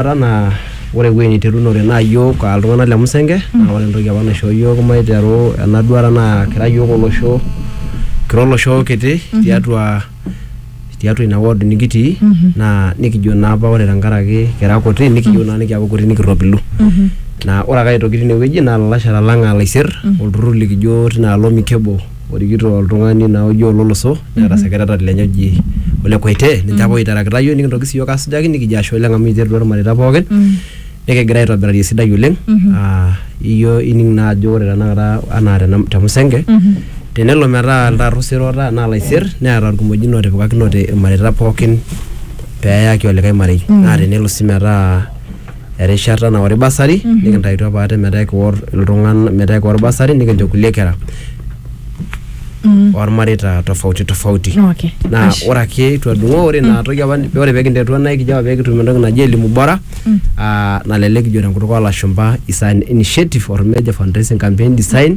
Ata naa ore ewuei niterunore naa iyiook aa iltung'anak le Musenge naa ore entoki apa naishoo iyiook maiteru ena duata naa kira iyiook olosho kira olosho kiti tiatua tiatua ina ward nikitii naa nikijo naa apa ore tenkaraki kira kuti nikiyieu naa nikiaku kuti nikirropilu naa ore ake aitoki tinewueji naa ilalashara lang aa ilaisirr olturrur likijo tina alo mikebo. orikito oltung'ani naa oji Ololoso neeta secretary lenye oji Ole Koitee ninche apa oiterakita yiok nikintoki sii yiok asujaki nikijo ashe oleng amu iterutua irmareita pookin nikigira aitobirari esidai oleng aa iyio ining naa ajo ore tenakata anaa tena te Musenge tenelo metaa iltaat osero oota naa ilaisier neeta irkimojino ootipikakinote irmareita pookin peeyaki olikae marei naa tenelo sii metaa erishata nawori basari nikintayutua apa ate metaa ekiwor iltung'ana metaa ekiwor basari nikincho kulie kera ormareita tofauti tofauti Okay. naa Ashe. ore ake itu adung'oo ore ina toki apa ore pekinterutua naa ikijo apa pekitum entoki naji elimu bora ah, nalelek kijo tenkutuk olashumpa is an initiative or major fundraising campaign design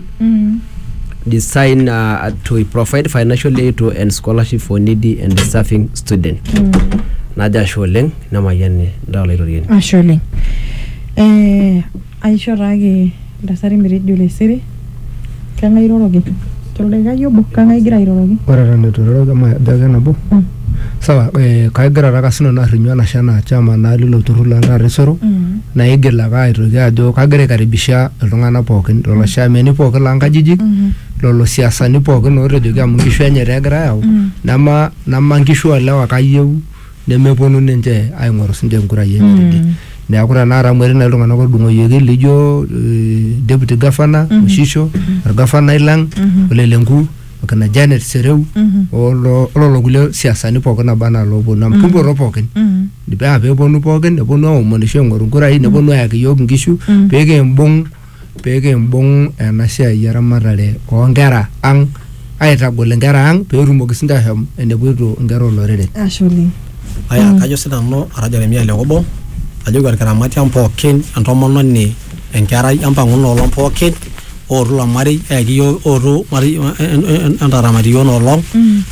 design uh, to provide financial aid to and scholarship for needy and deserving student najo ashe oleng nemayian ndaa Olaitoriani. Ashe oleng. Ee aisho taake iltasati metejo lesere. Keng'ae iroroki? Toldaikai obo, kang'ae igira airoroki? Ore eton eitu airoroki amu ajo ake nabo. Sawa, ee kagira taake sinanu arrinyu enashe enaa chairman naa lilo turrur le Ntarre Isero naigil ake aitoki ajo kagira aikaribisha iltung'anak pookin, lelo chairmani pookin loo nkajijik, lelo siasani pookin ootejoki amu nkishu enye taa egira aayau, nema nkishu oo lewa ake ayieu nemeponu ninche aing'oru sinche enkurai enye mm. tidie neeku tenakata amu etii nai iltung'anak otudung'oyioki lijo eh, deputy governor mm -hmm. oshisho mm -hmm. orgafanai lang mm -hmm. olelenku akina janet sereu mm -hmm. ololo kulie siasani pookin naba anaa looponu amu mm -hmm. kimpoto pookin mm -hmm. paa peeponu pookin neponu aomonisho aing'oru nkurai mm -hmm. neponu ayaki yiok inkishu mm -hmm. pekimbung' pekimbung ena siai eramatare onkera ang aitagol inkera ang petumoki sinche ashom enepoito inkera olorere Ashe oleng. Aya, kajo sinanu ara Jeremia Lekobo, ajoki orkiramati ang pookin, entomononi, enkerai, empang'u inoolong pookin, ootu ilo marei, eyaki yiok, ootu marei entaramat iyiok inoolong.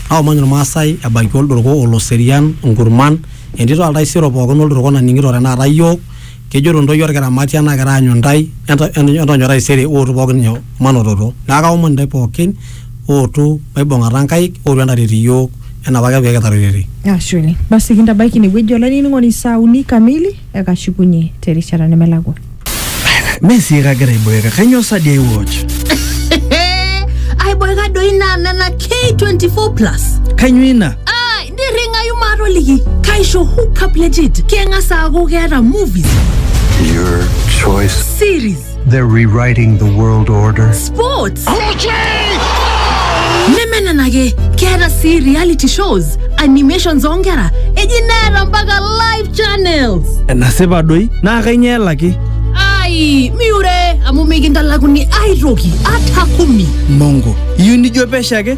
Naomon irmaasai ebaiki olduruku, oloserian, inkurman, entito oltaisere pookin olduruku naning'ito tanakata yiok, Kejoito ntoyie olkiramatia nagira aanyu ntae entonyo taisere ootu pookin nyoo manototo. Neaku kaomon ntae pookin ootu maibung'ata nkaik ootu entaret iyiook enaa apake pee kitaretetere. Ashe oleng. Basi kintabaiki ine wueji olainining'oni saa uni kamili ekashukunye te rishata nemelakua. Mee sii kagira aiboeka, kainyoo sa dii aiwatch? Aiboeka doi naa nena K24 plus. Kainyoo ina? nirringayu maatoliki kaisho hookup legit keng'as aaku keeta movies Your choice. series They're rewriting the world order. sports neme nena ake keeta sii reality shows animations oonkera eji neeta mpaka live channels enasipa doi naa kainyoo elaki ai miure amu mikintalakuni aitoki ata kumi mongo iyieu nijo pesho ake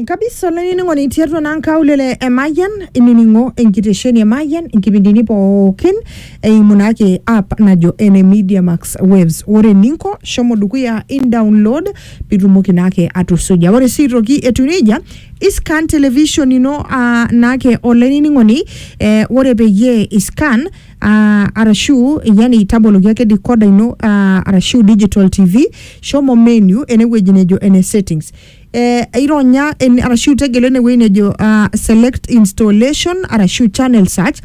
Nkabisa olainining'oni tiatua naa nkaulele e Mayian inining'o enkitesheni e Mayian inkipindini pookin eimu naake app najo ene Media Max Waves. Ore eninko shomo dukuya in download pitumoki naake atusuja. Ore sii aitoki etiu neija iscan television ino uh, naake olainining'oni eh, ore peyie iscan uh, arashu yani taboloki ake decoder ino uh, arashu digital tv shomo menu enewueji nejo ene settings eh, ironya en, arashu tegelu enewueji nejo ah, select installation arashu channel search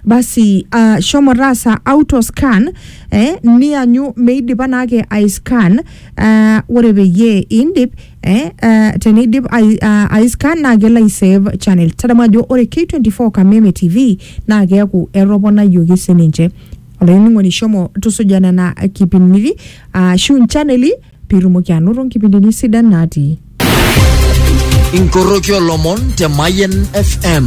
basi ah, shomo taasa auto scan eh, nianyu meidipa naake aiscan ah, ore peyie indip eh, ah, teneidip ai- ah, aiscan naa kelo aisave channel tadamu ajo ore k24 kameme tv naa keeku etoponayioki sininche olainining'oni shomo tusuja nena kipindini ashu nchaneli Pitumoki anoto nkipindini sidan natii. Inkoroki olomon te Mayen FM.